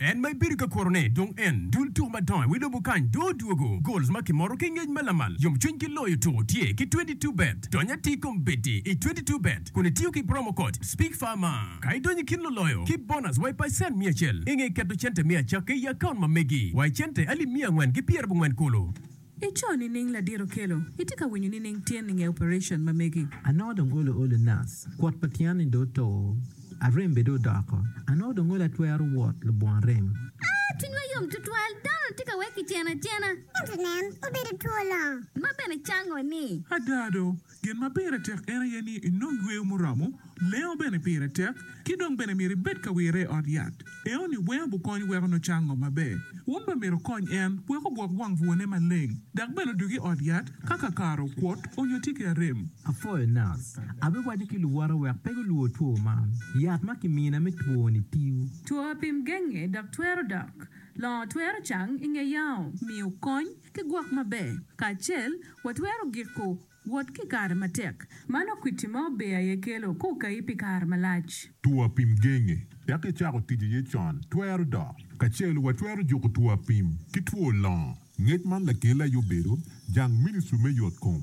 En ma ibedo ka kurone dong en dul tuko madongo iwi lobo kany dong odwogo. Goals ma kimoro ki ngec ma lamal yomcwiny ki loyo tuko tye ki twenty two bet. Dony atir kom bedi i twenty two bet kun itiyo ki promo code SPEAKFARMA ka idonyo i kin luloyo ki bonus wa i pacent miya acel. Inge keto cente me acakki i account ma megi wa i cente alip miya angwen ki pyerabongwen kulu. I co nining ladit okelo? Itye ka winyo nining tyen ninge operation ma megi? Anongo dong olo olo nas, kwot pa tyen ni dong oto, arem bene dong odoko, anongo dong olo atwero wot lubwon rem. Aa, cwinywa yom tutwal, dano-ni tye ka wek kiceno acena. Ento nen, obedo two longo. Ma bene cango ni. Ada do, Gin ma pire tek en aye ni inong yweyo muromo, lengo bene pire tek, ki dong bene myero ibed ka wire i ot yat. Enoni weng obukony weko nucang ngo maber. Wun bene myero wukony en wek ogwok wang bwone maleng, dok bene odug i ot yat ka kakare okwot onyo tye ki arem. Apwoyo Nas. Abiwaco ki luwota wek pe gulwor two man. Yat ma kimina me twoni tiyo. Two apim genge dok twero dok. Longo twero cang i nge yao. Miyo kony. Ki gwok maber kacel, watwero giko wot ki i kare matek. Mano kwiti ma ober aye kelo ka okayi pi kare malac. Two apim genge wek icako tic iye con twero dok. Kacel, watwero juko two apim ki two longo. Ngec man lakelli aye obedo jang ministri me yotkom.